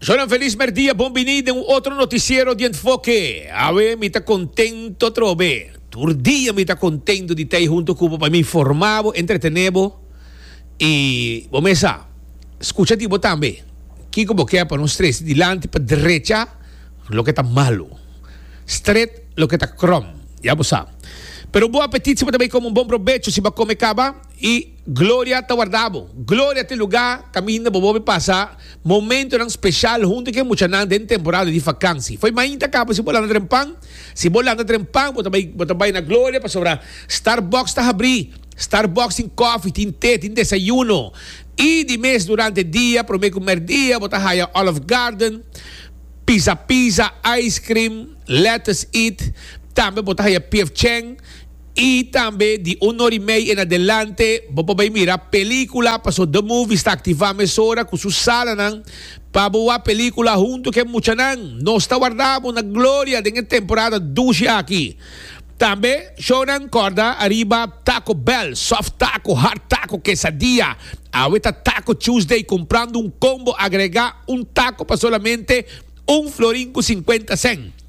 Zonan feliz merdia, bon bini den un otro noticiero di Enfoke. Awe mi ta contento atrobe. Tur dia mi ta contento di t'ey hunto cu bo pa mi informa bo, entretene bo y bo mes sa scucha di bo tambe. Kico bo kier pa nos tres dilanti pa drecha loke ta malo, stret loke ta krom, ya bo sa. Pero bo apetit siempre ta bay como un bon probecho si bo a come caba y. Gloria ta warda bo. Gloria ta e lugá kaminda bo bobbe pasa momentonan speshal huntu ku e muchanan den temporada di fakansi. Foi mainta kaba si bo lanta dren pan. Si bo lanta dren pan bo ta bai bo ta bai na Gloria pasobra Starbucks ta habrí. Starbucks tin kòfi, tin te, tin desayuno. I di mes durante e dia, promé ku mèrdia bo ta haya Olive Garden, Pizza Pizza, Ice Cream, Lettuce Eat. Tambe bo ta haya PF Chang. I tambe di un or i mei en adelante bo por bai mira pelicula paso The Movies ta activa mesora cu su salanan pa bo wak pelicula hunto cu e muchanan. Nos ta warda bo na gloria den e temporada dushi aki. Tambe shownan corda ariba Taco Bell, Soft Taco, Hard Taco, Quesadilla. Awe ta Taco Tuesday comprando un combo agrega un taco pa solamente un florin cu cincuenta cent.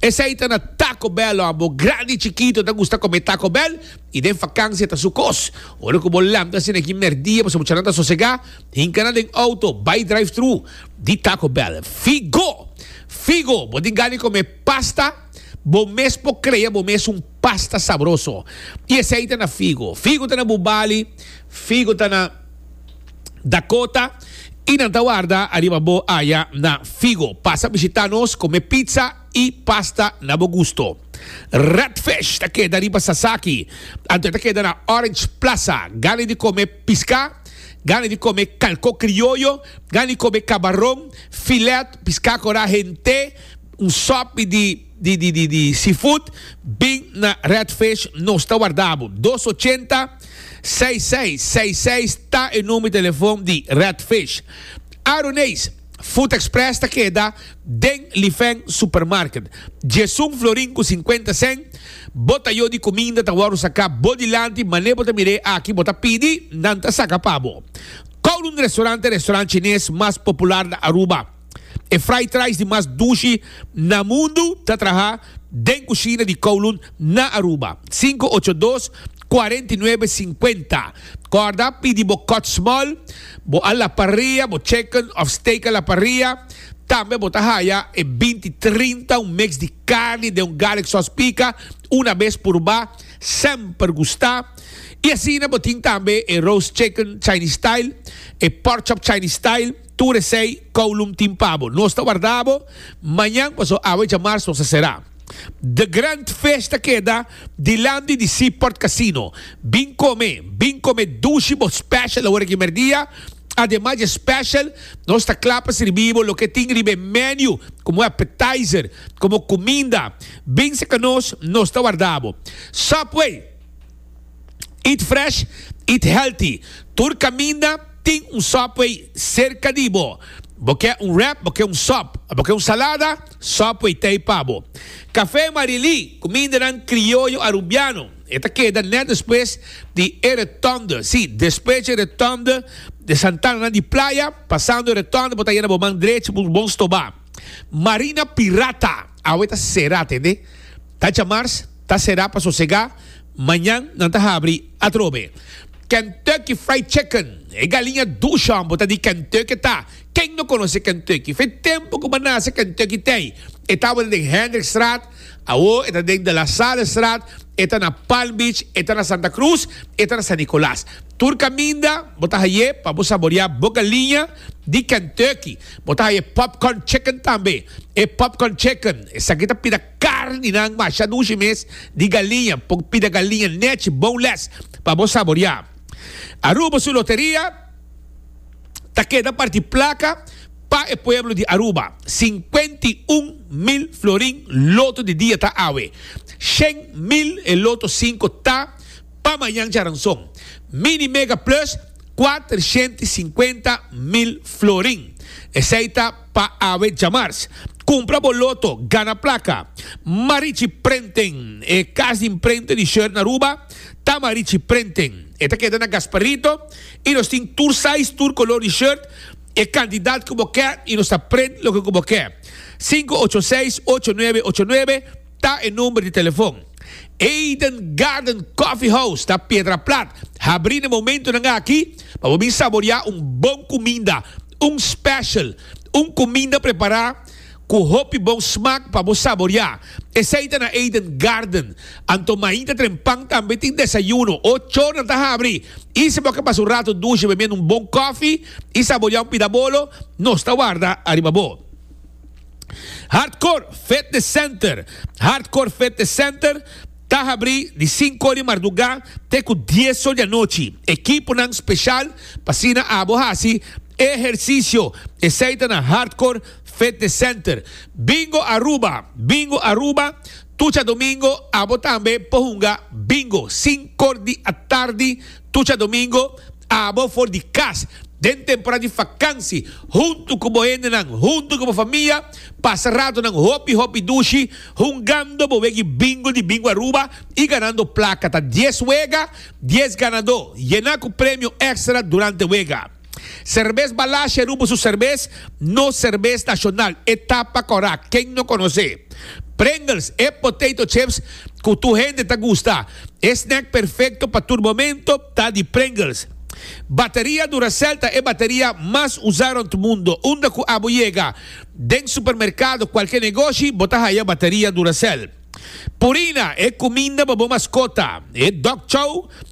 Esei ta na Taco Bell lo a bo grandi chikito ta gusta come Taco Bell y den fakansia ta su kos. Ora cu bo lamta asina aki merdia pasobra muchanan ta sosega, hinka nan den auto bay drive-thru di Taco Bell. Figo! Figo! Bo tin gana di come pasta? Bo mes por crea bo mes un pasta sabroso. Y esei ta na Figo. Figo ta na Bubali. Figo ta na. Dakota y nan ta warda ariba bo aya na Figo. Pasa bishita nos, come pizza y pasta na bo gusto. Redfish ta keda riba Sasaki, anto e ta keda na Orange Plaza. Gana di come pisca, gana di come calco crioyo, gana di come cabaron, filet, pisca cora, hente. Un sopi di di seafood bin na Red Fish nos ta warda bo. Dos ochenta, seis seis seis seis ta e number telefon di Red Fish. Aroneis Food Express ta keda den Lifeng Supermarket. Djesun florin ku sinkuenta sèn bo ta yo di kuminda ta wòrdu saka bo dilanti mane bo ta mir'é aki bo ta pidi nan ta saka pa bo. Kowloon Restaurant ta e restaurant chines mas popular na Aruba. E fried rice di mas dushi na mundu ta traha den kushina di Kowloon na Aruba. Sinku ocho dos, kuarenta i nuebe, sinkuenta. Kòrda, pidi bo kòt smòl, bo a la parria, bo chicken òf steak a la parria. Tambe bo ta haya e binti trinta un mix di karni den un garlic sòs pika. Una bes purba, semper gusta. I asina bo tin tambe e roast chicken Chinese style, e pork chop Chinese style. Tur esei kowlum tin pa bo. Nos ta warda bo mañan paso awe dja mars nos a sera. The Grand Fish ta keda dilanti di Seaport Casino. Bin kome, bin kome dushi bo special awor aki merdia. Ademas dje special nos ta kla pa sirbi bo loke tin riba e menu komo appetizer, komo kuminda. Bin seka nos, nos ta warda bo. Subway! Eat fresh, eat healthy. Tur caminda tin un Subway cerca di bo. Bo ke un wrap, bo ke un sop, bo ke un salada, Subway ta ei pa bo. Café Marilí, cumindanan crioyo Arubiano. E ta keda net despues di e rotonde, sí, despues dje rotonde de Santananan di Playa, pasando e rotonde bo ta yena bo man drechi bo bon stoba. Marina Pirata, awe ta cera, tende. Ta djamars. Ta será pa sosegá, mañan nan ta habri atrobe. Kentucky Fried Chicken, e galiña duchon bo ta di Kentucky ta. Ken no konosé Kentucky? F'e tempu ku bo a nase Kentucky t'ei. E tabata den Hendrickstraat, awor e ta den De La Sallestraat, e ta na Palm Beach, e ta na Santa Cruz, e ta na San Nicolas. Tur kaminda bo ta haye pa bo saboreá bo galiña di Kentucky. Bo ta haye Popcorn Chicken tambe. E Popcorn Chicken esaki ta pida. Carninan masha dushi mes di galiña, por pida galiña nech boneless pa bo saboria. Aruba su loteria ta keda parti placa pa e pueblo di Aruba. Cincuenta y un mil florin loto di dia ta awe. Shen mil e loto cinco ta pa mañan charanzon. Mini Mega Plus cuatrociento y cincuenta mil florin. Esey ta. pa awe djamars. Cumpra bo loto, gana placa. Marichi Prenten, e cas di imprenta di shirt na Aruba ta Marichi Prenten. E ta keda na Gasparito y nos tin tur size, tur color di shirt, e cantidad cu bo ke y nos ta prent loke cu bo ke. Sinku ocho seis ocho nuebe ocho nuebe ta e number di telefon. Eden Garden Coffee House ta Piedraplat, habri n'e momentonan aki pa bo bin saborea un bon cuminda. Un special, un cuminda prepará cu hopi bon smaak pa bo saboriá. Esey ta na Eden Garden. Anto mahinta trempan tambe tin desayuno. Ocho ora nan ta habri y si bo ke pasa un rato dushi bemiendo un bon kofi y saboriá un pida bolo, nos ta warda ariba bo. Hardcore Fitness Center Hardcore Fitness Center. Ta habri di sinku di mardugá te ku dies or di anochi. Ekiponan speshal pa asina abo hasi e ehersisio, esei ta na Hardcore Fitness Center. Bingo Aruba, Bingo Aruba, Tucha domingo abo tambe por hunga bingo, sinkor di atardi. Tucha domingo, abo for di cas den temporada di fakansi huntu ku bo hendenan, huntu ku bo famia, pasa ratonan hopi hopi dushi hungando bo wegi Bingo di Bingo Aruba i ganando plaka. Ta dies wega, dies ganadó, yena ku premio extra durante wega. Serbes Balashe rubo su serbes, no serbes nashonal, e tapa kòrá, ken no konos'é? Pringles, e potato chips ku tur hende ta gusta, e snack perfekto pa tur momento ta di Pringles. Bateria Duracell ta e bateria mas usá rònt mundo, unda ku abo yega den supermerkado, kualke negoshi, bo ta haya bateria Duracell. Purina, e kuminda pa bo maskota, e dog chow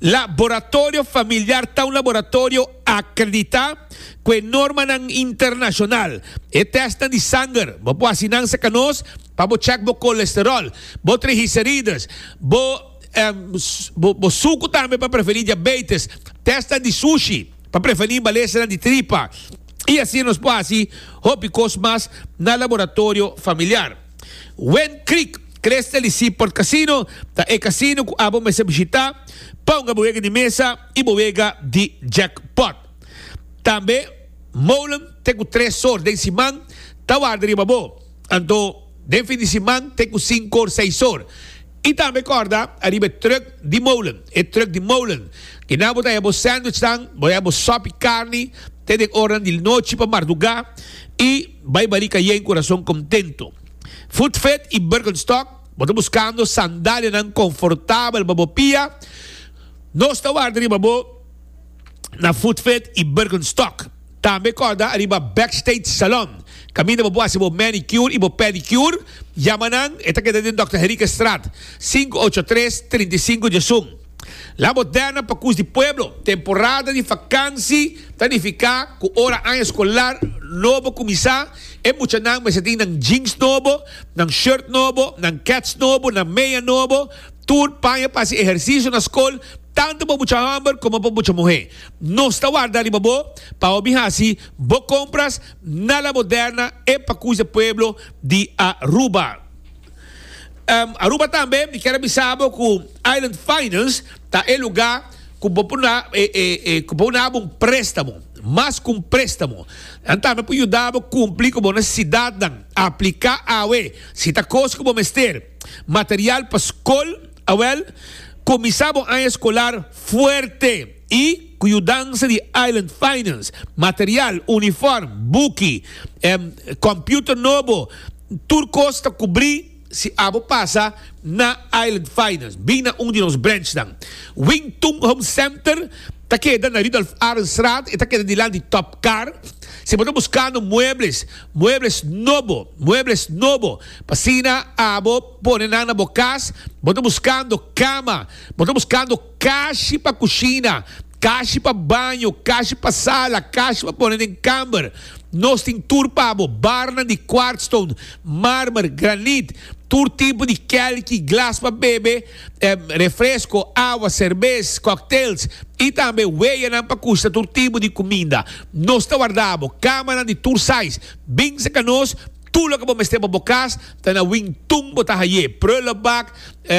Laboratorio Familiar ta un laboratorio akreditá ku e normanan internashonal. E tèstnan di sanger bo por hasi nan serka nos pa bo chèk bo kolesteròl, bo trigiserides, bo bo suku tambe pa prevení diabeites, tèstnan di sushi pa prevení imbalèsenan di tripa i asi nos por hasi hopi kos mas na Laboratorio Familiar. Wend Creek Crystal y Seaport Casino ta e casino cu abo mester bishita pa hunga bo wega di mesa y bo wega di jackpot. Tambe molen te cu tres or den siman ta warda riba bo, anto den fin di siman te cu cinco or seis or. Y tambe corda ariba e truck di molen, e truck di molen y na bo ta haña bo sandwichnan, bo ta haña bo sopi carni te den ornan di nochi pa marduga y. Bai bari ca yey curason contento. Footfed y Birkenstock, bo ta buscando sandalianan confortabel pa bo pia? Nos ta warda riba bo na Footfed y Birkenstock. Tambe corda ariba Backstage Salon, caminda bo por haci bo manicure y bo pedicure, yama nan, e ta keda den Dòkter Henriquez Straat, sinku ocho tres, trinta i sinku Djesun. La Moderna pa Cus di Pueblo, Temporada di fakansi ta nifiká ku ora aña skolar nobo kuminsá, e muchanan mester tin nan jeans nobo, nan shirt nobo, nan kets nobo, nan meya nobo, tur paña pa hasi ehersisio na skol, tantu pa mucha hòmber komo pa mucha muhé. Nos ta warda riba bo pa hopi hasi bo kompras na La Moderna e pa Cus di Pueblo di Aruba. Aruba tambe mi kier a bisa bo ku Island Finance ta e luga ku bo por na ku bo na bo un prestamo mas ku un prestamo nan tambe por yuda bo kumpli ku bo nesesidatnan aplika awe si ta kos ku bo mester material pa skol awèl kuminsá bo aña eskolar fuerte i ku yudansa di Island Finance material unifòrm buki kòmpiuter nobo. Tur kos ta kubrí si abo pasa na Island Finance. Bin na un di nos branchnan. Wing Tung Home Center ta keda na Rudolf Arendstraat, e ta keda dilanti Top Car. Si bo ta buskando muebles, muebles nobo, muebles nobo, p'asina abo pone nan na bo kas, bo ta buskando kama, bo ta buskando. Kashi pa kushina, kashi pa baño, kashi pa sala, kashi pa pone den kamber. Nos tin tur pa bo, barnan di kwartstone, marmer, granit, tur tipo di kèlki, glas pa bebe, refresko, awa, serbes, cocktails, i tambe weyanan pa kushna tur tipo di kuminda. Nos ta warda bo kamanan di tur size. Binse ka nos! Tur loke bo mester pa bo kas ta na wing tun bo ta haye, prullenbak,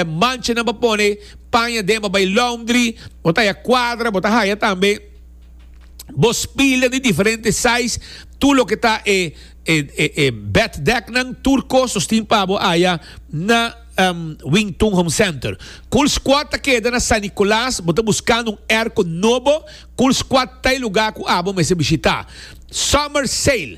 manchenan pa pone, paña den pa bay laundry, bo ta haya cuadra, bo ta haya tambe bo spilnan di diferente size, tur loke ta e e bed deknan, tur kos nos tin pa bo haya na Wing Tun Home Center. Cool Squad ta keda na San Nicolas, bo ta buskando un erko nobo, Cool Squad ta e lugar cu abo mester bishita. Summer Sale.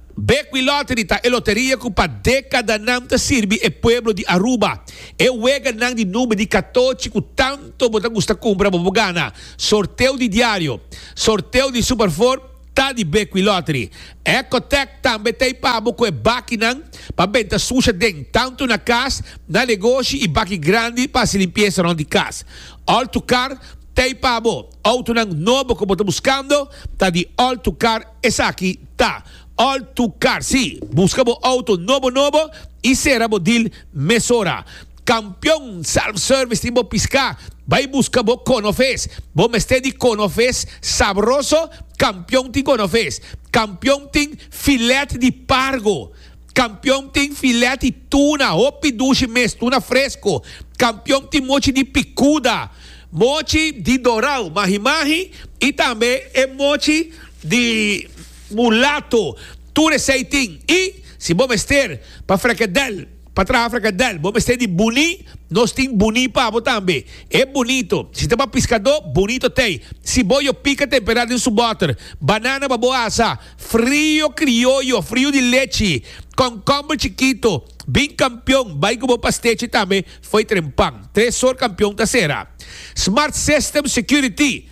Bekwin Lottery ta e loteria ku pa dekadanan ta sirbi e pueblo di Aruba. E weganan di number di katochi ku tanto bo ta gusta kumpra pa bo gana. Sorteo di diario, sorteo di Super Four ta di Bekwin Lottery. Ecotech tambe ta ei pabo ku e bakinan pa benta susha den, tanto na kas, na negoshi i baki grandi pa hasi limpiesa rond di kas. All to Car ta ei pabo. Outonan nobo ku bo ta buskando ta di All to Car. Esaki ta all to car, si, buska bo auto nobo nobo y sera bo deal mesora. Campeon Self Service tin bo pisca, bay buska bo cono fes, bo mester di cono fes sabroso, Campeon tin cono fes, Campeon tin filet di pargo, Kampion tin filèt di tuna, hopi dushi mes, tuna fresku. Kampion tin mochi di pikuda, mochi di dorau, mahi mahi, i tambe e mochi di mulato. Tur esei tin. I si bo mester pa frekedèl, pa traha frekedèl, bo mester di buní, nos tin buní pa bo tambe. E bunito. Si ta pa piskadó, bunito t'ei. Si bo yo pika temperá den su bòter. Banana pa bo asa. Frio crioyo, frio di lechi, concombre chikito, bin campeon, bai cu bo pastechi tambe, fo'i tren pan. Tres sor campeon ta cera. Smart System Security,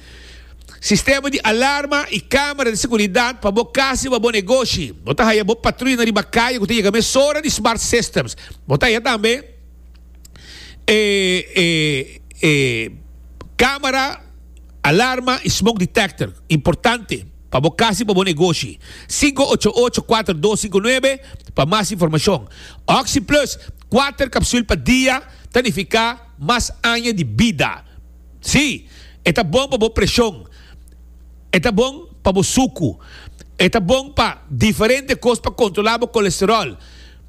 sistema di alarma y camera di seguridad pa bo casa y pa bo negoshi. Bo ta haya bo patruya na riba caye cu ta yega mesora di Smart Systems. Bo ta haya tambe e e e camera, alarma y smoke detector. Importante. pa bo cas i pa bo negoshi. Sinku ocho ocho kuater dos sinku nuebe pa mas informashon. Oxi Plus, kuater kapsul pa dia ta nifiká mas aña di bida. Sí, e ta bon pa bo preshon, e ta bon pa bo suku, e ta bon pa diferente kos pa kontrolá bo kolesteròl.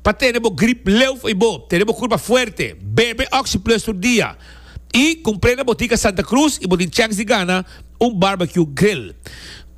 Pa tene bo grip leuf y bo tene bo curpa fuerte, bebe OxyPlus tur dia. Y cumpre na Botica Santa Cruz y bo tin chance di gana un barbecue grill.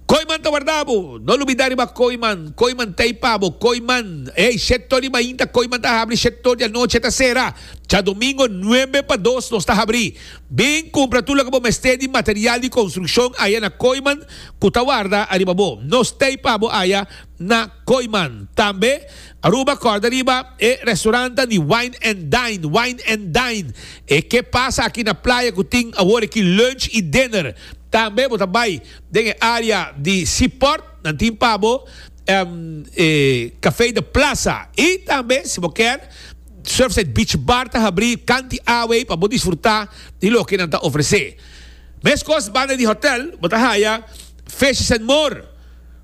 Kooiman ta warda bo! No lubida riba Kooiman! Kooiman t'ey pa bo! Kooiman! Ey, siete tor di mainta Kooiman ta habri, siete tor di anochi e ta sera. Djadomingo nuebe pa dos nos ta habri. Bin cumpra tur loke bo mester di material di construccion aya na Kooiman cu ta warda ariba bo. Nos t'ey pa bo aya. na Koiman. Tambe Aruba kòrda riba e restorantan di Wine and Dine, Wijn en Dijn, e ke pasa aki na playa ku tin awor aki lunch i dinner. Tambe bo ta bai den e área di Seaport, nan tin pa bo e Café de Plaza. I tambe si bo kèr, Surfside Beach Bar ta habrí kanti awei pa bo disfrutá di loke nan ta ofresé. Meskos banda di hòtèl bo ta haya Fishes and More.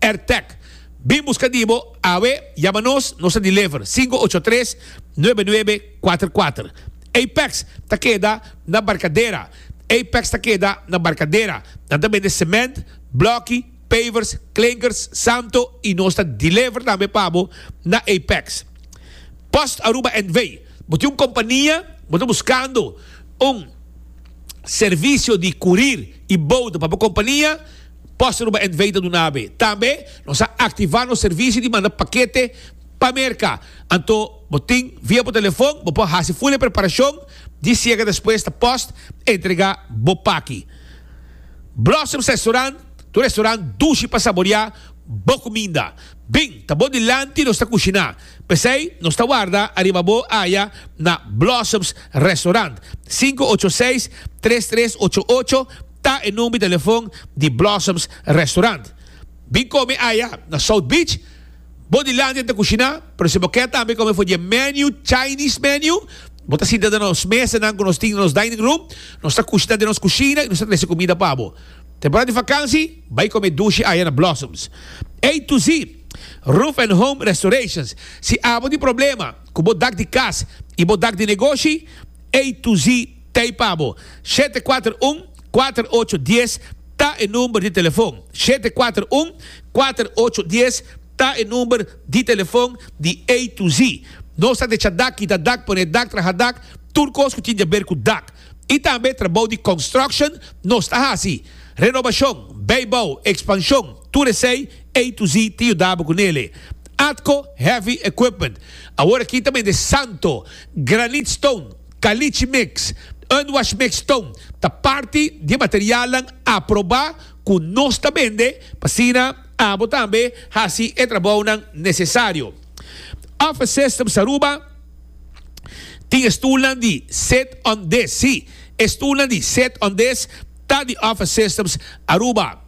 Airtag, Bin buska di bo awe, yama nos, nos ta deliver, sinku ocho tres, nuebe nuebe, kuater kuater. Apex ta keda na Barcadera Apex ta keda na Barcadera. Nan ta bende cement, bloki, pavers, klinkers, samto i nos ta deliver tambe pa bo na Apex. Post Aruba NV, Bo tin un kompania, bo ta buskando un servisio di kurir i bouda pa bo kompania? Poster ba envei ta duna abe. Tambe nos a activa nos servicio di manda pakete pa Merca. Anto bo tin via bo telefon, bo por haci ful e preparacion di siega despues ta post entrega bo paki. Blossoms Restaurant, tur restaurant dushi pa saboria bo cuminda. Bin ta bo dilanti nos ta cushina. P'esey nos ta warda ariba bo aya na Blossoms Restaurant, 586-3388, ta e number telefon di Blossoms Restaurant. Bin come aya na South Beach. Bo di Landia ta cushina, pero si bo kier tambe come for di e menu, Chinese menu, bo ta sinta den nos mesanan cu nos tin den nos dining room. Nos ta cushina den nos cushina y nos ta trece cumida pa bo. Temporada di vakansi, bay come dushi aya na Blossoms. A to Z Roof and Home Restorations. Si abo tin problema cu bo dak di cas y bo dak di negoshi, A to Z. T'ei pa bo. Shete kuater un, kuater ocho dies ta e number di telefon. Shete kuater un, kuater ocho dies ta e number di telefon di A to Z. Nos ta decha dak, kita dak, pone dak, traha dak, tur kos ku tin jaber ku dak. I tambe trabou di construction nos ta hasi. Renobashon, beibou, ekspanshon, tur esei A to Z tin yuda bo ku nele. Atco Heavy Equipment. Awor aki ta bende santo, granite stone. Caliche Mix, Unwash Mix Tone ta parti di e materialnan aprobá ku nos ta bende, asina abo tambe hasi e trabounan nesesario. Office Systems Aruba tin e stulnan di Sit on This, sí, e stulnan di Sit on This ta di Office Systems Aruba.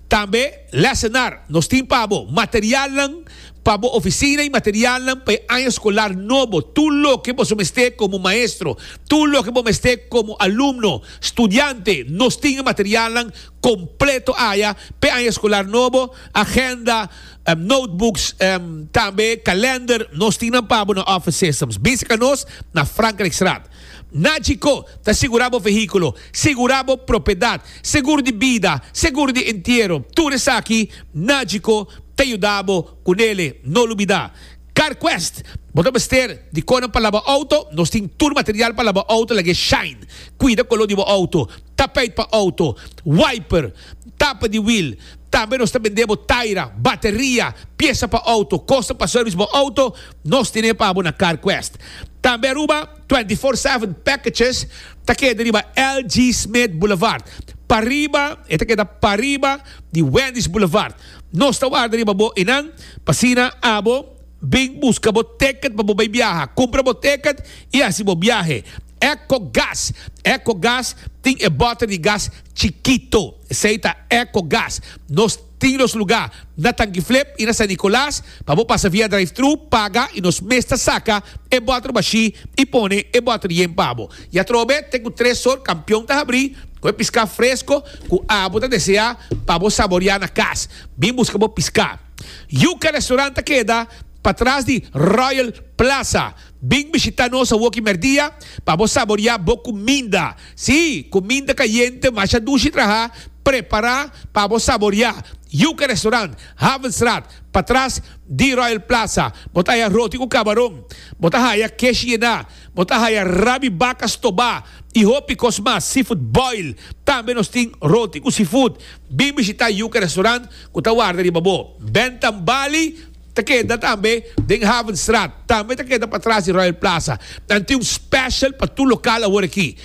Tambe lesenar, Nos tin pa bo materialnan pa bo ofisina i materialnan pa e aña skolar nobo. Tur loke boso mester komo maestro, tur loke bo mester komo alumno, studiante, nos tin e materialnan kompleto aya pa e aña skolar nobo, agenda, notebooks, tambe kalender. Nos tin nan pa bo na Office Systems. Bisita nos na Frankrijkstraat. Na Chicó ta sigurá bo vehíkulo, sigurá bo propiedat, segur di bida, segur di entiero, tur esaki na Chicó ta yuda bo ku nele. No lubidá CarQuest. Bo ta mester di konan pa laba outo? Nos tin tur material pa laba outo lag'é Shine. Kuida koló di bo outo, tapeit pa outo, wiper, tapa di wiel. Tambe nos ta bend'é bo taira, bateria, piesa pa outo, kosnan pa service bo outo. Nos tin e pabo na CarQuest. Tambe Aruba twenty four seven packages ta keda riba LG Smith Boulevard, pariba, e ta keda pariba di Wendy's Boulevard. Nos ta warda riba bo i nan, pa asina abo bin buska bo ticket pa bo bai biaha. Kumpra bo ticket i hasi bo biahe. EcoGas, EcoGas tin e boter di gas chikito, esei ta EcoGas. Nos. Tin nos lugá na Tanquiflep i na San Nicolas pa bo pasa via drive-thru, paga i nos mes ta saka e bòter bashí i pone e bòter yen pa bo. I atrobe te ku tres sort kampion ta habrí ku e piská fresko ku abo ta deseá pa bo saboreá na kas. Bin buska bo piská. Yuca Restaurant ta keda patras di Royal Plaza. Bin bishitá nos awoki merdia pa bo saboreá bo kuminda. Sí, kuminda kayente masha dushi traha prepará pa bo saboriá. Yuca Restaurant, Havenstraat, patras di Royal Plaza. Bo ta haya roti ku kabaron, bo ta haya kesh yená, bo ta haya rabi baka stobá i hopi kos mas, seafood boil. Tambe nos tin roti ku seafood. Bin bishitá Yuca Restaurant ku ta warda riba bo. Bèntan Bali. Ta keda tambe den Havenstraat. Tambe ta keda patras di Royal Plaza. Nan tin un special pa tur lokal awor aki.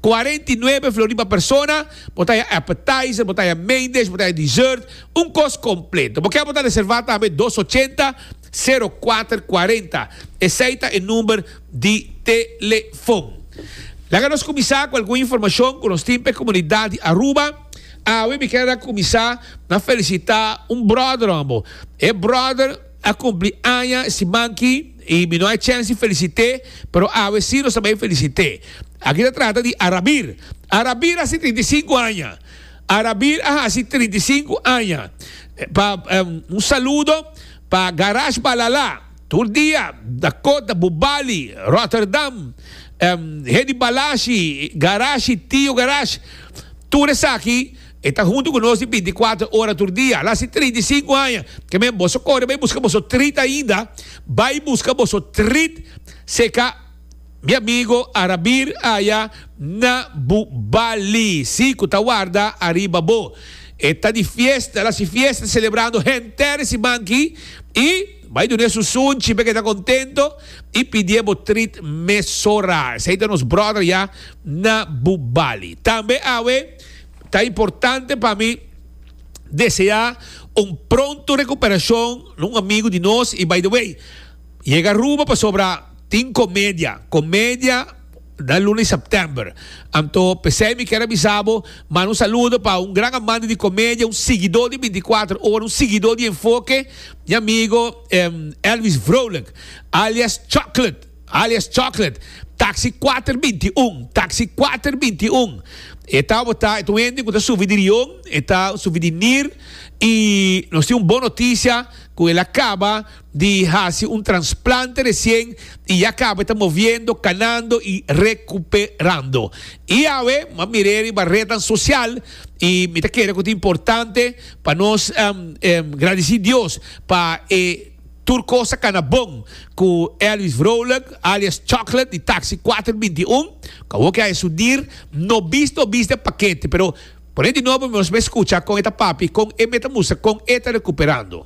Cuarenta y nuebe flori pa persona. Bo ta haya appetizer, bo ta haya main dish, bo ta haya dessert. Un kos completo. Bo kier bo ta reserva tambe dos ochenta, sero kuater kuarenta. Esey ta e number di telefon. Laga nos cuminsa cu algun informacion cu nos tin pa e comunidad di Aruba. Awe mi ker a kuminsá na felisitá un bròder òf ambo. E bròder a kumpli aña siman ki i mi no a chèns di felisit'é, pero awe sí nos a bai felisit'é. Aki ta trata di Arabir. Arabir hasi trinta i sinku aña. Arabir a hasi trinta i sinku aña. Pa un saludo pa Garage Balalá. Tur dia, Dakota, Bubali, Rotterdam, Hedy Balashi, Garashi, Tio Garage, tur esaki e ta huntu ku nos di binticuatro ora tur dia. Ala si trinta i sinku aña ke men boso kore bai buska boso trit ainda, bai buska boso trit seka mi amigo a rabir aya na Bubali, si ku ta warda ariba bo. E ta di fiesta, ala si fiesta selebrando henter simanki i. Bai dun'é su sunchi p'e ke ta kontento i pidié bo trit mesora. Esei ta nos bròder ya na Bubali. Tambe awe ta importante pa mi deseá un pronto rekuperashon na un amigu di nos. I bai de wei, yega Aruba pasobra tin komedia, komedia na luna di sèptèmber. Anto p'esei mi kier a bisa bo, manda un saludo pa un gran amante di komedia, un siguidó di binti kuater ora, un siguidó di Enfoke Mi amigo Elvis Vrolijk, alias Choklet, alias Chocolate, taxi kuater binti i un, taxi kuater binti i un, e ta botá, e ta un hende ku ta sufi di rion, e ta sufi di nir, i nos tin un bon notisia ku el a kaba di hasi un transplante resien i ya kaba ta moviendo, kanando i rekuperando. I awe, mi a mir'é riba retnan sosial i mi ta kere ku ta importante, Pa nos gradici Dios pa e tur cos a cana bon cu Elvis Vrolijk alias Chocolate di Taxi cuater binti un, cu awo ke a esu dir, no bis no bis den pakete, pero pone di nobo mi nos mester scucha con e ta papi, con e meta mustra con e ta recuperando.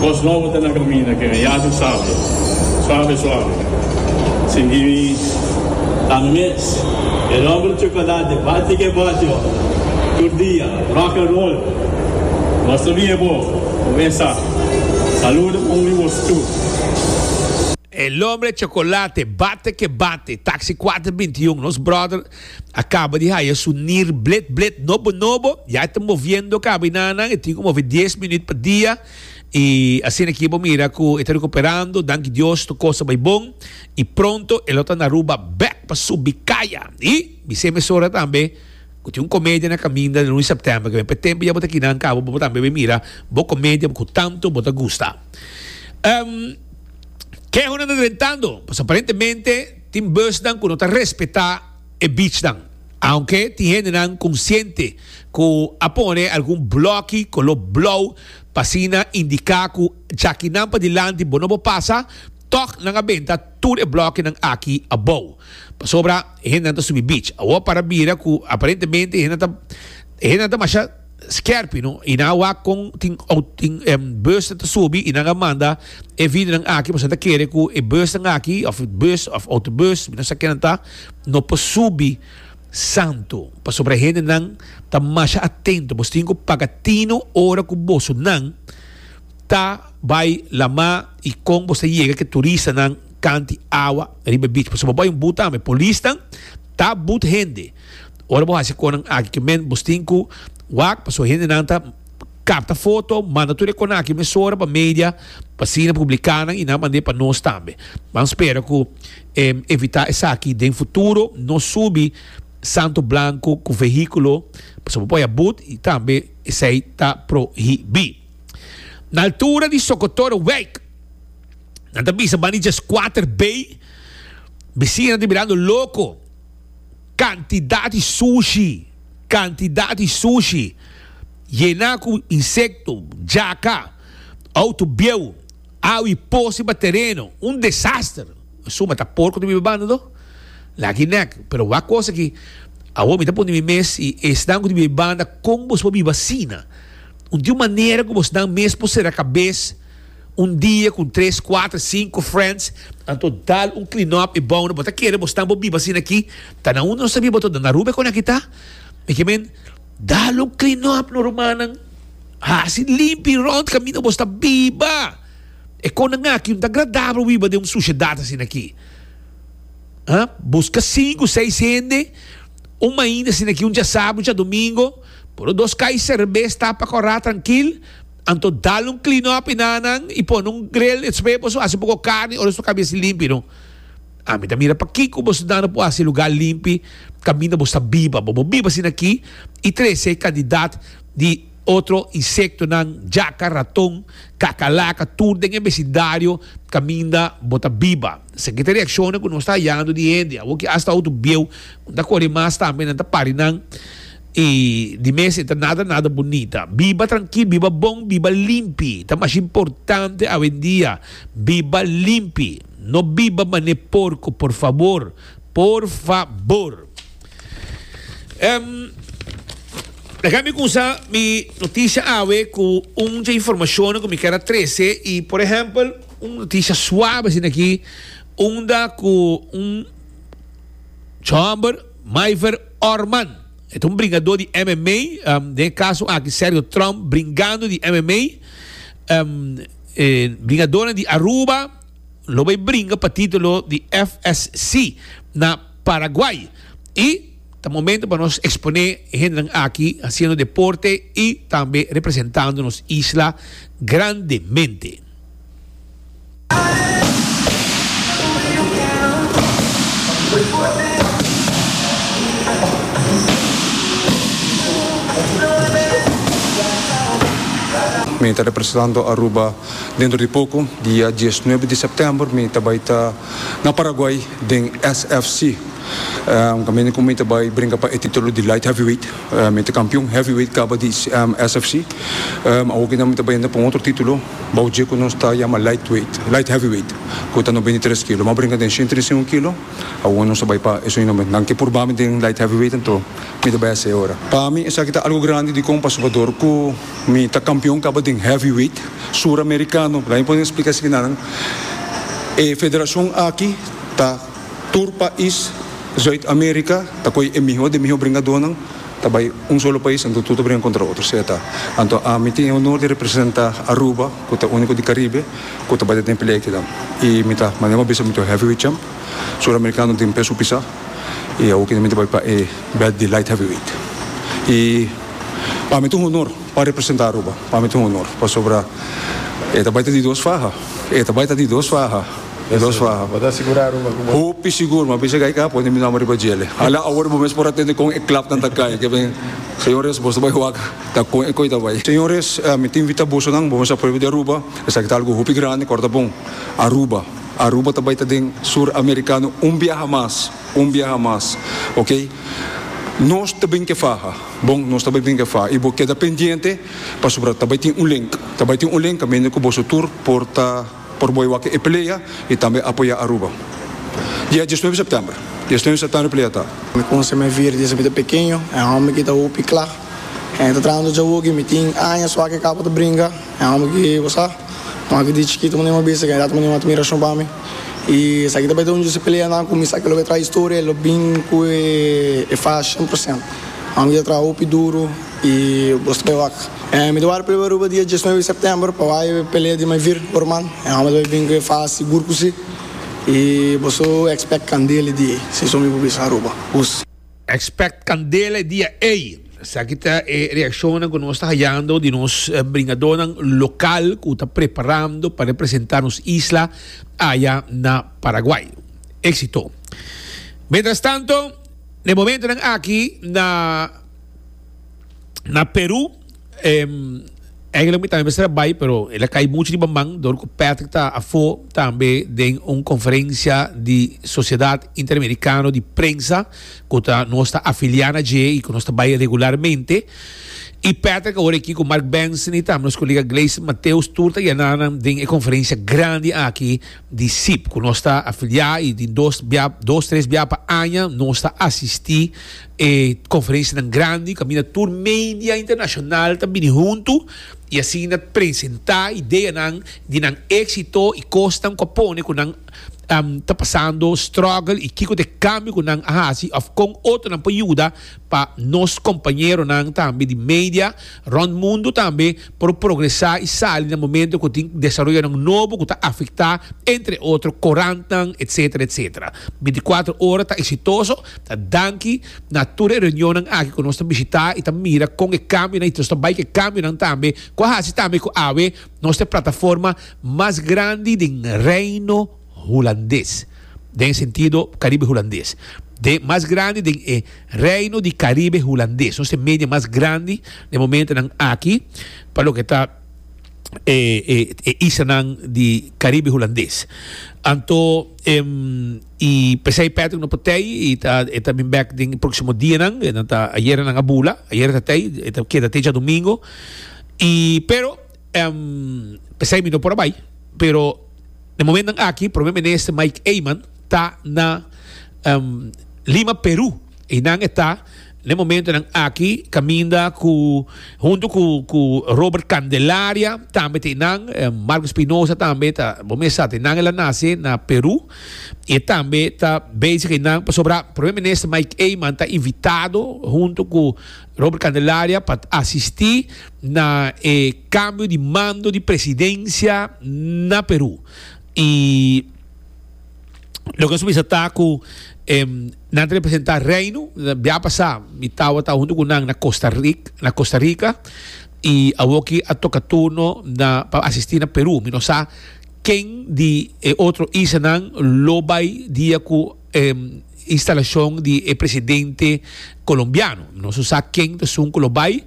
Bos nobo ta na kaminda kere yah'I sabia, suave suave, sin di mi tando mes. El hombre chocolate bati ke bati ora tur dia rock and roll Bos ta bin e bo con esa Saludo pa un di bos tur. El hombre chocolate bati ke bati Taxi cuater binti un Nos brother a kaba di haya su nir blet blet nobo nobo ya e ta moviendo kabinanan e tin ku move dies minüt pa dia i asina aki bo mira ku e ta rekuperando danki Dios tur kos ta bai bon i pronto e lo ta na Aruba bek pa su bikaya i bis'é mesora tambe ku tin un komedia na kaminda den lun sèptèmber ke p'e tempu ya bo ta aki nan kaba bo tambe bai mira bo komedia ku tantu bo ta gusta kehona ta drentando pasobra aparentemente. Tin busnan ku no ta respetá e bichnan, aunke tin hendenan konsiente ku a pone algun blòki koló blou pa asina indiká ku djakinan padilanti bo no por pasa, tòg nan a benta tur e blòkinan aki abou. Pasobra e hendenan ta subi bich. Awor para bira ku aparentemente e hendenan ta e hendenan ta masha. Skerpie no y nan a wak con tin bus ta subi y nan a manda e vidinan aki pasobra nan ta kere cu e busnan aki of bus of autobus mi no sa kinan ta no por subi santo pasobra e hendenan ta masha atento boso tin cu paga tino ora cu boso nan ta bay lama y con boso ta yega ke turistanan kanti awa riba e beach pasobra bo bay un but tambe polisnan ta but hende Ora bo hasi konan aki ke men bos tin ku wak paso hendenan ta kapta foto manda tur e konan aki mesora pa media pa asina publika nan i nan mand'e pa nos tambe. Nan spera ku e evitá esaki den futuro no subi santo blanku ku vehíkulo pasobra por haya but i tambe esei ta prohibí. Na altura di Sokotorowijk nan ta bisa bani dje skuater bay, bisinan ta birando loko. Cantidad di sushi, cantidad di sushi yena cu insecto, jaca, auto bieu, awa y posa riba tereno, un desaster. N suma ta por cu ta biba banda do? Laki nek, pero wak cos aki, awor mi ta puntra mi mes y esnan cu ta biba banda con boso por biba asina? Un tin un manera cu bosnan mes por cera cabes. Un dia cu tres, cuater, cinco friends, anto dal un clean up y bono bo ta kere bo stan bo biba asina aki, ta na uno no sabia bo ta dal na Aruba e con aki ta, mi ki men, dal un clean up no rumannan, haci limpi y rond camino bo sta biba, e connan aki no ta agradabel wiba den un suciedad asina aki, ha, busca cinco, seis hende un mainda asina aki un djasabi un djadomingo, pone dos cai cerbes tapa corra trankil, Anto dal un clean up y na nan y pone un grill espe boso haci poco carni ora su cambia esi limpi no. Ami ta mira pakico boso nan no por haci lugar limpi caminda bo sta biba bo bo biba asina aki y trece e cantidad di otro insecto nan jaca raton cacalaca tur den e vecindario caminda bo ta biba esaki ta reacciones cu nos ta hayando di hende awo ki hasta hotu bieu cu no ta cori mas tambe nan ta pari nan I di mes e ta nada nada bunita. Biba trankil, biba bon, biba limpi. Ta mas importante awendia. Biba limpi. No biba man'e porco, por fabor. Por fa bor. Ehm, Laga mi cunsá mi noticia awe cu un dje informacionnan cu mi kier a trece. I por ehempel, un noticia suave asina aki, unda cu un djòmber, Maiver Orman, e ta un bringadó di MMA, den e kaso aki Sergio Trump bringando di MMA, e bringadónan di Aruba lo bai bringa pa título di FSC na Paraguai i ta momento pa nos eksponé e hendenan aki hasiendo deporte i tambe representando nos isla grandemente. Mi ta representando Aruba dentro di poco, dia diesnuebe di september mi ta bay ta na Paraguay den SFC, un caminda cu mi ta bay brinca pa e titulo di light heavyweight. Mi ta kampion heavyweight kaba di SFC. Awor ke nan mi ta bai henter pa un otro titulo bou dje ku nos ta yama lightweight, light heavyweight, ku ta nos bini tres kilo. Mi a brinka den shen treinta i un kilo, awor nos ta bai pa esun nomber. Nan ke purba mi den light heavyweight anto mi ta bai hasi ora. Pa mi esaki ta algu grandi dikon pasobra bador ku mi ta kampion kaba den heavyweight suramerikano. Laga mi pone splika esaki na nan. E federashon aki ta. Tur pais Zuid America ta koe e miho de miho bringadónan ta bai un solo pais anto tur ta bringa kontra otro sea ta. Anto ami tin e honor di representa Aruba ku ta uniko di Karibe ku ta bai ta den pelea ekidan i mi ta manda un abiso mi ta heavyweight champ suramerikano den peso pisá i awo keda mi ta bai pa e bèlt di light heavyweight i pa mi ta un honor pa representa Aruba pa mi ta un honor pasobra e ta bai ta di dos faha e ta bai ta di dos faha. E dos fa. Hopi sigur, ma bisha kai ka pone mi nomber riba djele. Hala awor bo mes por atende kon e klapnan ta kai. Ke ben, Señores, boso bai waka ta kon e koi ta bai. Señores, mi ta invita bosonan, bo mes a prueba di Aruba, esaki ta algu hopi grandi, kor ta bon. Aruba, Aruba ta bai ta den Sur Amerikano un biaha mas, un biaha mas, ok. Nos ta bin ke faha, bon, nos ta bai bin ke faha. I bo keda pendiente, pasobra ta bai tin un link, ta bai tin un link kaminda ku boso tur por ta. Por bo e wak e pelea y tambe apoya Aruba. Dia diesnuebe september. Diesnuebe september e pelea ta. Mi kunse mi vir desde mi ta pekeño. E homber ki ta hoop y kla. E mi ta traha un djawoki y mi tin añas wak e kaba ta bringa. E homber ki bo sa. Kua ki di chikito mi no iba bisa. Kende a ta mira un admiracion pa mi. Y esaki ta bai ta un djus e peleanan ku mi sa ke lo bai traha historia. E lo bin ku e faha cien por ciento. Homber ki ta traha hoop y duro. I boso ta wak. Mi ta wara prueba Aruba dia diesnuebe di sèptèmber pa wak e pelea di mai vir por man. E hòmber ta bai bin ku e fas sigur ku si. I boso ekspèkt kandela e dia ei, si so mi por bisa Aruba. Us. Ekspèkt kandela e dia ei. Esaki ta e reakshonnan ku nos ta hayando di nos bringadónan lokal ku ta preparando pa representá nos isla aya na Paraguay. Éksito! Mientras tanto, den momentonan aki na. Na Peru mi tambe mester a bai pero el a cay mucho riba man dor cu Patrick ta afo tambe den un conferencia di Sociedad Interamericano di Prensa cu ta nos ta afilia na dje y cu nos ta bai regularmente y Patrick awor aki cu Mark Benson y tambe nos colega Gleison Mateus tur ta yena nan den e conferencia grandi aki di CIIP cu nos ta afilia y den dos bia dos tres bia pa aña nos ta asisti E conferencianan grandi caminda tur media internacional ta bini hunto y asina presenta ideanan di nan exito y cosnan cu a pone cu nan ta pasando struggle y kico ta e cambio cu nan a haci of con otronan por yuda pa nos compañeronan tambe di media rond mundo tambe por progresa y sali na momento cu tin desaroyonan nobo cu ta afecta entre otro corantnan etcetera etcetera binticuatro ora ta exitoso. Ta danki na tur e reunionnan aki ku nos ta bishitá i ta mira kon e kambionan i nos ta bai ku e kambionan tambe ku a hasi tambe ku awe nos ta e plataforma mas grandi den Reino Hulandes, den e sentido Karibe Hulandes. Den mas grandi den e Reino di Karibe Hulandes. Nos ta e media mas grandi den e momentonan aki pa loke ta e e islanan di Karibe Hulandes. Anto. Y pesey Patrick no por tey y e ta bin bek den e proximo dianan. E nan ta, ayera nan a bula, ayera ta tey, e ta keda te djadomingo. Y pero, pesey mi no por a bay, pero den momentonan aki Prome Minister Mike Eman ta na Lima, Peru. I nan e ta, n'e momentonan aki, kaminda ku, huntu ku, ku Robert Candelaria, tambe ta e nan, Marco Espinosa tambe ta, bo mes sa, ta e nan el a nase na Peru, i e tambe ta bezig e nan, pasobra Prome Minister Mike Eman ta invitado huntu ku Robert Candelaria pa asisti na e kambio di mando di presidensia na Peru. I. Loke nos bisa ta ku e nan ta representá Reino. Bia pasá mi tabata huntu ku nan na Costa Rica, na Costa Rica i awoki a toka turno na pa asistí na Perú. Mi no sa ken di e otro isla nan lo bai dia ku e Instalashon di e presidente colombiano. Nos no sa ken ta sun cu lo bay.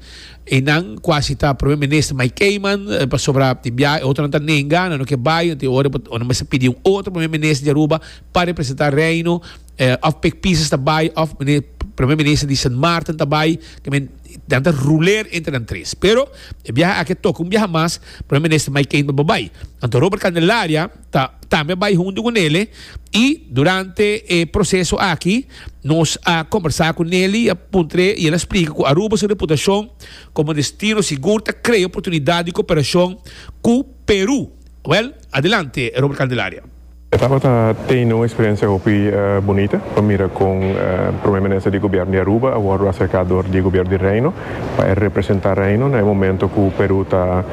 Eynan cuasi ta Primer Minister Mike Keiman, pasobra den biaha e otronan ta nenga, nan no ke bay, nan tin ora bo ta mester pidi un otro Primer Minister di Aruba pa representa Reino. Of Pik Pieces ta bay, of Primer Minister di Sint Maarten ta bay. I mean, nan ta ruler entre nan tres. Pero, e biaha aki a toca un biaha mas, Primer Minister Mike Keiman bo bay. Anto Robert Candelaria. ta tambe bai huntu ku Nelly i durante e proseso aki nos a kombersá ku Nelly i a puntr'é i el a splika ku Aruba su reputashon komo destino sigur ta krea oportunidat di koperashon ku Perú. Wèl, adelante Robert Candelaria. E tabata tene un eksperensia hopi bunita pa mira kon Prome Minister di Gobièrnu di Aruba a wòrdu aserká dor di Gobièrnu di Reino. pa e representa Reino na e momento cu Peru ta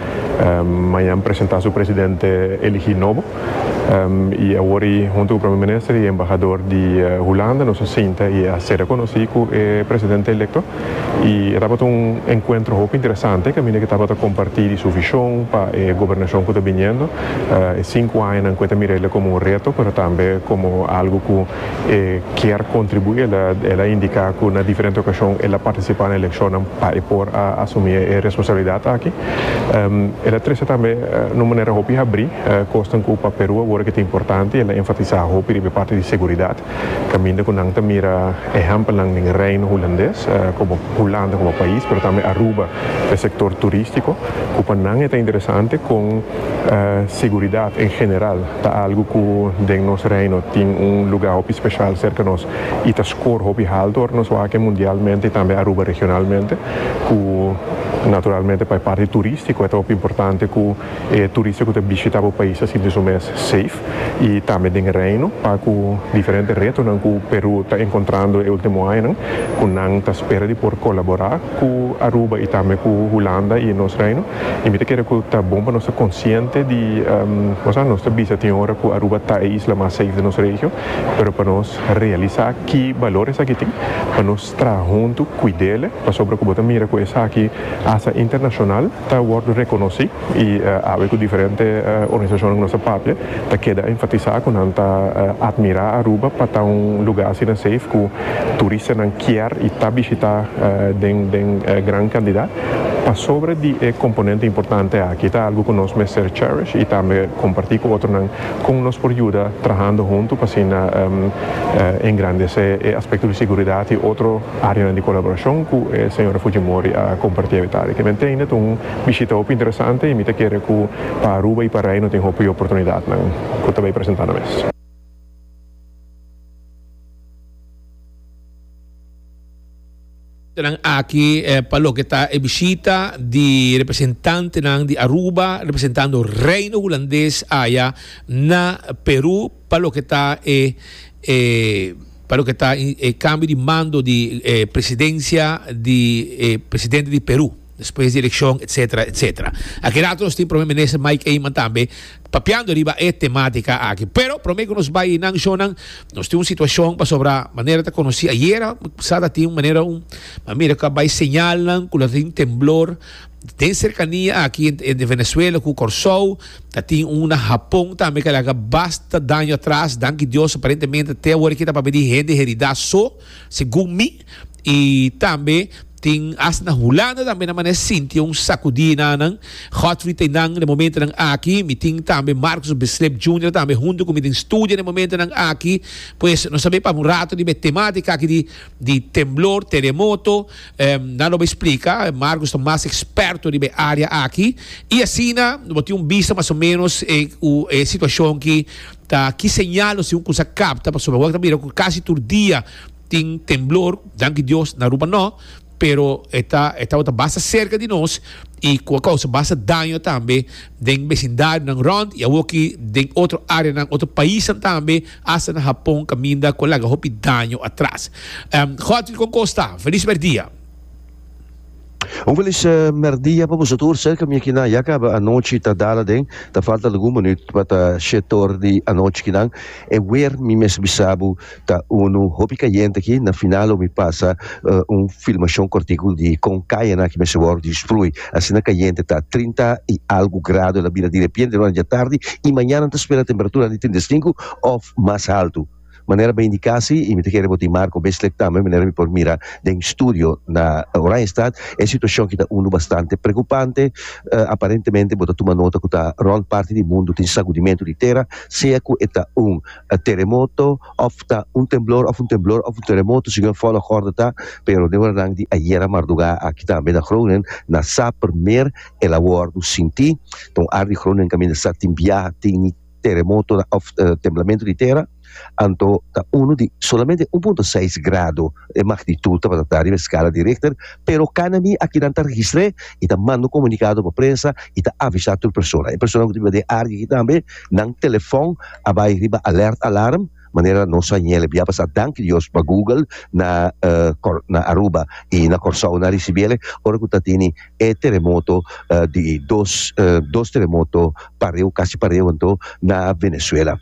mañan presenta su presidente eligi nobo y awor y hunto cu Premier Minister y Embahador di Hulanda nos a sinta y a ser reconoci cu e presidente electo y e tabata un encuentro hopi interesante caminda cu e tabata comparti di su vision pa e gobernacion cu ta biniendo e cinco añanan cu e ta mira ela como un reto pero tambe como algo cu e kier kontribuí. El a indiká ku na diferente okashon el a partisipá na elekshonnan pa e por a asumí e responsabilidat aki. El a trese tambe na un manera hopi habrí kosnan ku pa Perú a wòrdu ke ta importante i el a enfatisá hopi riba e parti di seguridat, kaminda ku nan ta mira ehèmpelnan den Reino Hulandes, komo Hulanda komo pais, pero tambe Aruba pa e sektor turístiko, ku pa nan e ta interesante kon seguridat en general Ta algu ku den nos Reino tin un lugá hopi speshal serka nos i ta skor hopi haltu ora nos wak e mundialmente i tambe Aruba regionalmente, ku naturalmente pa e parti turístiko e ta hopi importante ku e turista ku ta bishitá bo pais ta sinti su mes safe i tambe den e Reino pa ku diferente retonan ku Perú ta enkontrando e último añanan ku nan ta spera di por kolaborá cu Aruba y tambe cu Hulanda y nos Reino y mi ta kere cu ta bon pa nos ta consciente di osea nos ta bisa tin ora cu Aruba ta e isla mas safe di nos regio pero pa nos realisa ki balor esaki tin pa nos traha hunto cuidele pasobra cu bo ta mira cu esaki hasta internacional ta wordo reconoci y awe cu diferente organisacionnan cu nos ta papia ta keda enfatisa cu nan ta admira Aruba pa ta un lugar asina safe cu turistanan kier y ta bishita den den gran cantidad pasobra di e componente importante aki. Ta algo cu nos mester cherish y tambe comparti cu otronan con nos por yuda trahando hunto pa asina engrandece e aspecto di seguridad y otro areanan di colaboracion cu e señora Fujimori a comparti avetari. Te me tende ta un bishita hopi interesante y mi ta kere cu pa Aruba y pa Reino tin hopi oportunidadnan cu ta bay presenta na mes. Nan aki e pa loke ta e bishita di representantenan di Aruba representando Reino Hulandes aya na Peru pa loke ta e e pa loke ta e cambio di mando di e presidencia di e presidente di Peru. despues di eleccion etc. Etc. Aki rato nos tin Prome Minister Mike Eman tambe papiando riba e tematica aki. Pero prome cu nos bay nan shownan nos tin un situacion pasobra manera ta conoci ayera sa ta tin un manera un a mira cu a bay señalnan cu lo tin temblor den cercania aki entre Venezuela cu Corsou ta tin un na Japon tambe cu a laga basta daño atras danki Dios aparentemente te awor aki ta papia di hende herida so segun mi. I tambe tin hasta na Hulanda tambe nan mane sinti un sakudí na nan. Godfrey ta nan den momentonan aki. Mi tin tambe Marcus Beslep Junior tambe huntu ku mi den studia den momentonan aki. Pues nos a bai paba un rato riba e temátika aki di di temblor, teremoto. Nan lo bai splika. Marcus ta mas eksperto riba e área aki. I asina nos por tin un bista mas o ménos e ku e situashon ki ta ki señal nos tin un kusa kapta. Pasobra wak ta mira ku kasi tur dia. Tin temblor, danki Dios na Aruba no, pero e ta e tabata basta serka di nos y cu a causa basta daño tambe den becindarionan rond y awo aki den otro areanan, otro paisnan tambe, hasta na Japon caminda cu a laga hopi daño atras. Godfrey Concosta, Feliz Mercdia. Un felis merdia pa boso tur serka mi akinan ya kaba anochi ta dala den ta falta algun minut pa ta shetor di anochi kinan e wer mi mes bisabu ta unu hopi kayente aki na final lo mi pasa un filmashon kortiku di kon kayana aki mester wòrdu distrui asina kayente ta trinta i algu grado el a bira direpiente durante di atardi i mañana nan ta spera temperaturan di trinta i sinku òf mas haltu. Manera bo a indiká sí, y mi ta kere bo tin Marco Besleck tambe, manera mi por mira den studio na Oranjestad, e situacion aki ta unu bastante preocupante. Aparentemente bo ta tuma nota cu ta rond parti di mundu tin sagudimento di tera, sea cu e ta un teremoto of ta un temblor of un temblor of un teremoto, segun e volgorde ta, pero den oranan di ayera mardugá aki tambe na Groningen nan sa primer el a wordo sintí, ta un ar di Groningen caminda sa tin biaha tin. teremoto of temblamentu di tera anto ta uno di solamente un punto seis grado e magnitud tabata ta riba e skala di Richter pero kana mi aki nan ta registr'e y ta manda un komunikado pa prensa y ta avisa tur persona e personanan ku ta biba den área aki tambe nan telefòn a bai riba alert alarm. Manera nos a ñel e bia pasá danki Dios pa Google na na Aruba i na Kòrsou nan a risibí el ora ku ta tene e teremoto di dos dos teremoto pareu kasi pareu anto na Venezuela.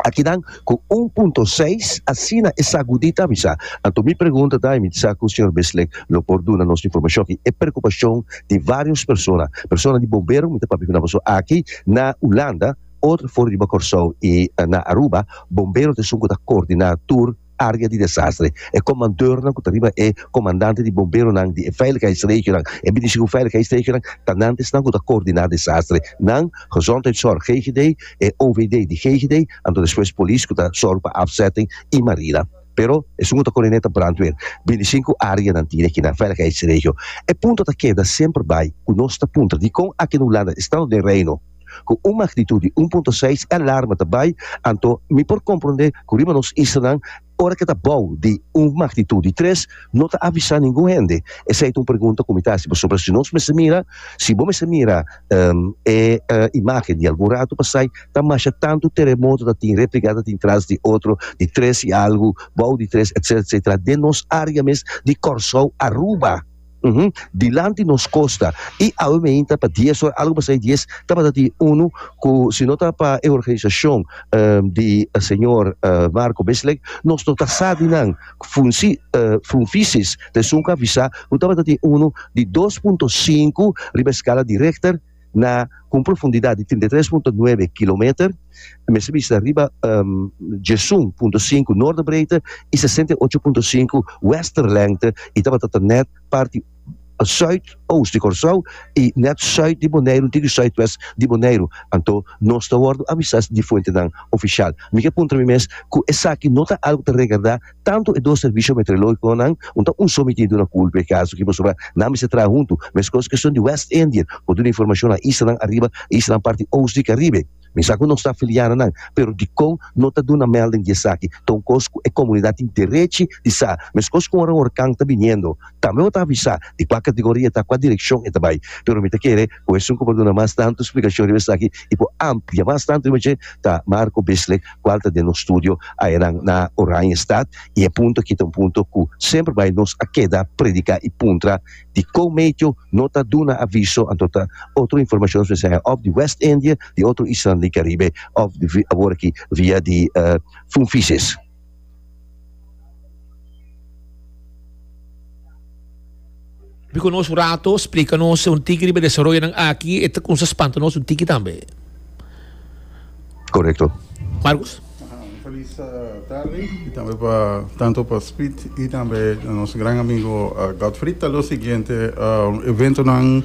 A kinan ku un punto seis asina e sagudí ta bisa. Anto mi pregunta ta i mi sa ku señor Bislik lo por duna nos informashon aki e preokupashon di vários persona. Persona di bombero mi ta papia ku nan pasobra aki na Hulanda, Otro for riba Kòrsou i na Aruba, bombero ta esun ku ta koordiná tur área di desastre. E komandornan ku ta riba e komandante di bomberonan di e veiligheidsregionan, e bini sigu veiligheidsregionan, ta nan ta esnan ku ta koordiná desastre. Nan, Gezondheidszorg GGD, e OVD di GGD, anto despues polis ku ta sòru pa afzetting i marina. Pero esun ku ta koordineta brandweer. Bini sinku áreanan tin akinan, veiligheidsregio. E punto ta keda semper bai ku nos ta puntra dikon aki na Hulanda, estado den Reino? Ku un magnitud di un punto seis e alarma ta bai, anto mi por komprondé ku riba nos islanan ora ke ta bou di un magnitud di tres no ta avisá ningun hende. Esei ta un pregunta ku mi ta hasi pasobra si nos mester mira, si bo mester mira e imágen di algun ratu pasai ta masha tantu teremoto ta tin repligá ta tin tras di otro di tres i algu, bou di tres etcetera etcetera den nos área mes di Kòrsou, Aruba. Uhm, dilanti nos kosta. I awe meinta pa dies ora, algo pasá i dies, tabata tin unu ku si no ta pa e organisashon di señor Marco Bisling nos no ta sa di nan funsi funfisis ta esun ku a visá ku tabata tin unu di dos punto sinku riba e skala di Richter. na ku un profundidat di trinta i tres punto nuebe kilometer, mester bista riba Jesun punto sinku noorderbreedte i sesenta i ocho punto sinku westerlengte i tabata ta nèt parti sùit-oust di Kòrsou i nèt sùit di Boneiru dint'e ku sùitwèst di Boneiru. Anto nos ta wòrdu avisá di fuentenan ofisial. Mi ke puntra mi mes ku esaki no ta algu ta regardá. Tantu e dos servisio meteorologiconan, un ta un somi tintu na culpa e caso aki pasobra nan mester traha huntu, mescos cu cuestion di West Indian por duna informacion na islanan ariba y islanan parti oost di Caribe. Mi sa cu no sta filia na nan, pero Dicon no ta duna melding di esaki, ta un cos cu e comunidad tin derechi di sa, mescos cu ora un hurcan ta biniendo, tambe bo ta avisa di cua categoria e ta, cua direccion e ta bay, pero mi ta kere. Ku esun ku por duna mas tantu splikashon riba esaki i por amplia mas tantu riba dje ta Marco Bisslek, kual ta den nos studio ayenan na Oranjestad. I e punto aki ta un punto ku semper bai nos a keda prediká i puntra di kon metio no ta duna aviso anto ta otro informashon espe sea òf di West India, di otro islanan di Karibe òf di awor aki via di Funvisis. Bico nos un rato explica nos un tiki riba desarrollonan aki, e ta comienza spanta nos un tiki tambe. Correcto. Marcus? Un feliz tarde y tambe pa tanto pa Speed y tambe nos gran amigo Godfrey. Ta lo siguiente eventonan.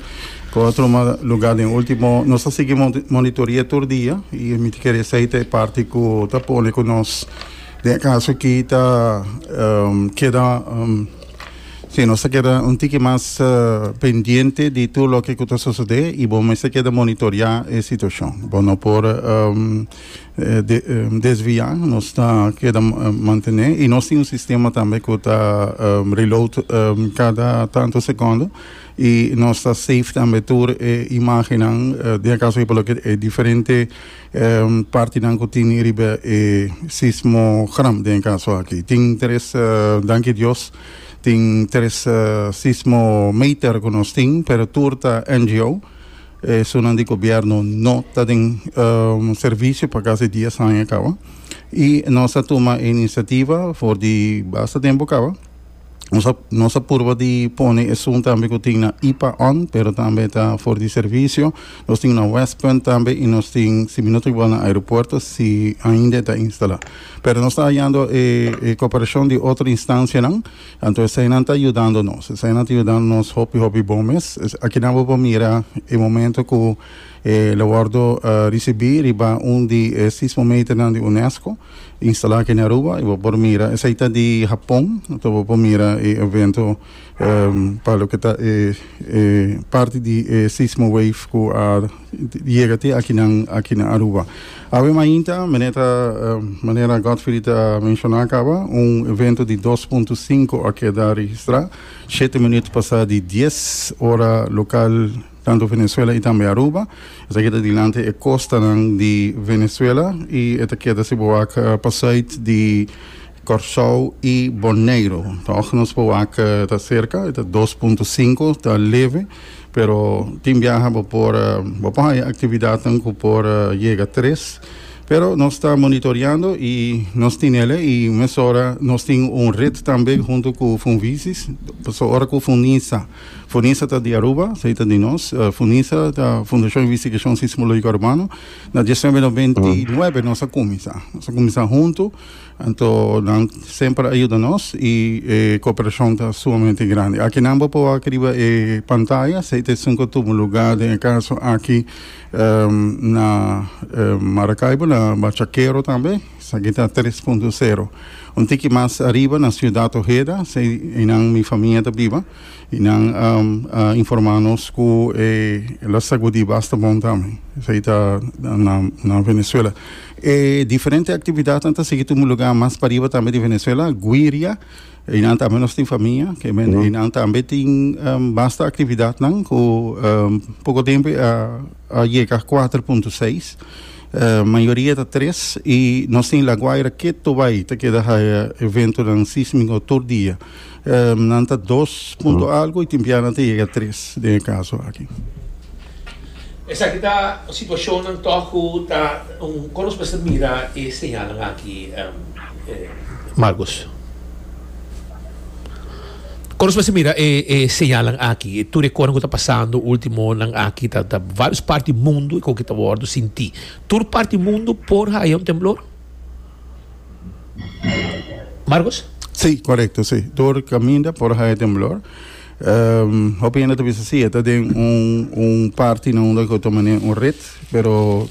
Por otro lugar den ultimo nos ta sigui monitoria tur dia y mi ta kere esey ta e parti cu ta pone cu nos den e caso aki ta keda si nos ta keda un tiki mas pendiente di tur loke cu ta sosode y bo mester keda monitoria e situacion bo no por desvia nos ta keda mantene y nos tin un sistema tambe cu ta reload cada tanto secondo Y nos ta save tambe tur e imagennan den e caso por loke e diferente partinan cu tin riba e sismogram den e caso aki. Tin tres, danki Dios, tin tres sismometer cu nos tin, pero tur ta NGO. Esunnan di gobierno no ta den servicio pa casi dies aña caba. Y nos a tuma e iniciativa for di basta tempo caba. Nos a, nos a purba di pone e sun tambe ku tin na IPA on, pero tambe ta for di servisio. Nos tin na West Punt tambe i nos tin si minuto igual na aeropuerto si ainda e ta instalá. Pero nos ta hayando e e koperashon di otro instansianan, anto eseinan ta yudando nos. Eseinan ta yudando nos hopi hopi bon mes. Es akinan bo por mira e momento ku e lo wòrdu risibí riba un di e sismometernan di UNESCO. instalá aki na Aruba y bo por mira esei ta di Hapon enton bo por mira e evento pa loke ta e e parti di e sismo wave ku a yega te akinan aki na Aruba awe mainta mene ta manera Godfrey ta menshoná kaba un evento di dos punto sinku a keda registrá shete minüt pasá di dies ora lokal. tantu Venezuela y tambe Aruba. Esaki ta dilanti e costanan di Venezuela y e ta keda si bo wak pa zuid di Corsou y Boneiro. Tog nos bo wak ta cerca, e ta dos punto sinku, ta leve, pero tin biaha bo por bo por haya actividadnan cu por yega tres. Pero nos ta monitoreando y nos tinele y mesora nos tin un red tambe hunto cu Funvisis, pasobra ora cu Funisa. Funisa ta di Aruba, so e ta di nos. Funisa ta Fundacion Investigacion Sismologico Urbano. Na diecinuebe de veintinuebe nos a cuminsa. Nos a cuminsa hunto, anto nan semper a yuda nos y e cooperacion ta sumamente grandi. Aki nan bo por wak riba e pantaya, esey ta e sunco tubo lugar, den e caso aki na Maracaibo, na Bachaquero tambe. Esaki ta tres punto sero. Un tiki mas ariba na Ciudad Ojeda, se einan mi famia ta biba y nan a informa nos cu e la sagudi basta bon tambe. Esaki ta na na Venezuela. E diferente actividadnan ta sigui tumu lugar mas pariba tambe di Venezuela, Guiria, einan tambe nos tin famia, kiemen einan tambe tin basta actividadnan cu poco tempo a a yega cuater punto seis. Mayoria ta tres y nos tin La Guaira, Keto bay ta keda haya eventonan sísmico tur dia. Nan ta dos punto algo y tin bia nan ta yega tres den e caso aki. Esaki ta situacionnan tog cu ta un con nos mester mira e señalnan aki Marcus. Kon nos mester mira e señalnan aki? E tur e kosanan ku ta pasando último onan aki ta vários parti mundu ku ta wòrdu sintí. Tur parti mundu por haya un temblor? Marcos? Sí, korekto sí. Tur kaminda por haya temblor. Hopi hende ta bisa sí, e ta den un un parti na unda ku ta manera un rit, pero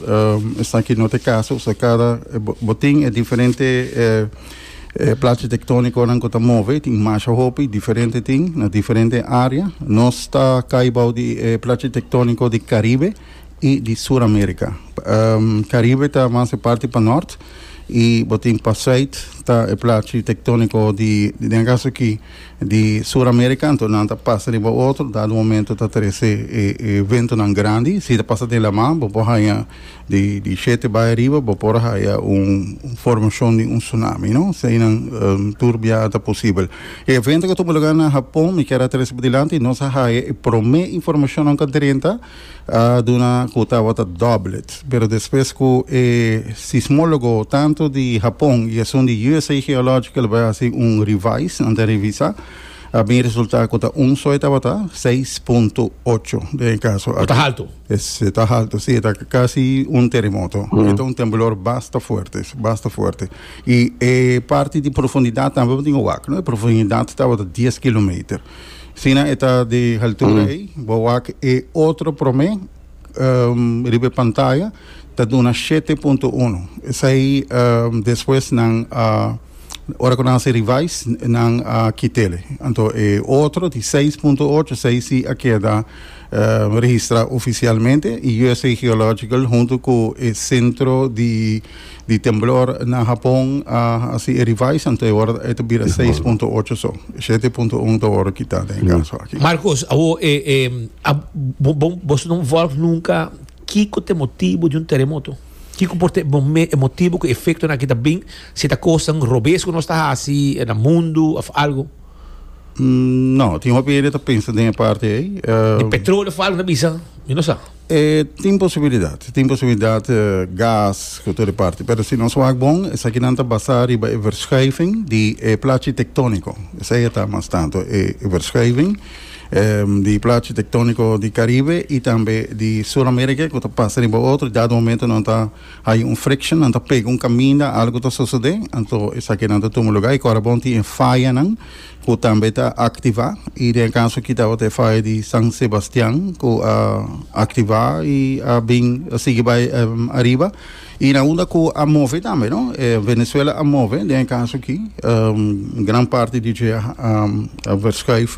esaki no ta e kaso. Bo tin e diferente. E plachi tectoniconan cu ta move tin masha hopi diferente tin na diferente area. Nos ta cay bao di e plachi tectonico di Caribe y di Sur America. Caribe ta mas e parti pa nort y bo tin pa suid ta e plachi tectonico di, den caso aki, di Sur America. Anto nan ta pasa riba otro, dado momento ta trece e ventonan grandi. Si ta pasa den laman bo por haya. Di shete bai ariba bo por haya un formashon di un tsunami, no? So einan tur bia a ta posibel. E evento ku a tuma lugá na Hapon, mi kier a trese pa dilanti, nos a haya e promé informashonnan ku a drenta, a duna ku tabata dòblet. Pero despues ku e sismólogo tantu di Hapon i esun di usa Geological a bai hasi un revise, nan ta revisa, a bin resultá ku ta un soi tabata seis punto ocho den e kaso aki. Se ta haltu, si, e ta kasi un teremoto. E ta un temblor basta fuerte, basta fuerte. I e parti di profundidat tambe bo tin ke wak, no? E profundidat tabata dies kilometer. Asina e ta di haltura ei, bo wak e otro promé riba e pantaya ta duna shete punto uno. Esei despues nan a, ora ku nan a hasi revise, nan a kit'e. Anto e otro di seis punto ocho, esei si a keda. registrá ofisialmente i usa Geological huntu ku e sentro di di temblor na Hapon a hasi e revise anto e wòrda e ta bira seis punto ocho so shete punto un ta wòrdu kitá den e kaso aki. Marcos, awo e e a bo bo boso no involve nunka kiko ta e motibu di un teremoto? Kiko por ta e mo e motibu ku e efektonan aki ta bin? Si ta kosnan robes ku nos ta hasi na mundu òf algu? Mm, no, tin hopi hende ta pensa den e parti ei. Di petrolio falta ta bisa, mi no sa. E tin posibilidat, tin posibilidat eh, gas, ku tur e parti. Pero si nos wak bon, esakinan ta basá riba e verschuiving di e plachi tektóniko. Esei e ta mas tantu e e verschuiving em, di plachi tektóniko di Karibe i tambe di Sur Amerika ku ta pasa riba otro. Dado momento nan ta Hay un friction, nan ta pega un caminda, algo ta sucede, anto esaki nan ta tuma lugar y corabon tin e fayanan cu tambe ta activa y den e caso aki tabata e faya di San Sebastian cu a activa y a bin a sigui bay ariba y na unda cu a move tambe no, Venezuela a move den e caso aki gran parti di dje a verschuif.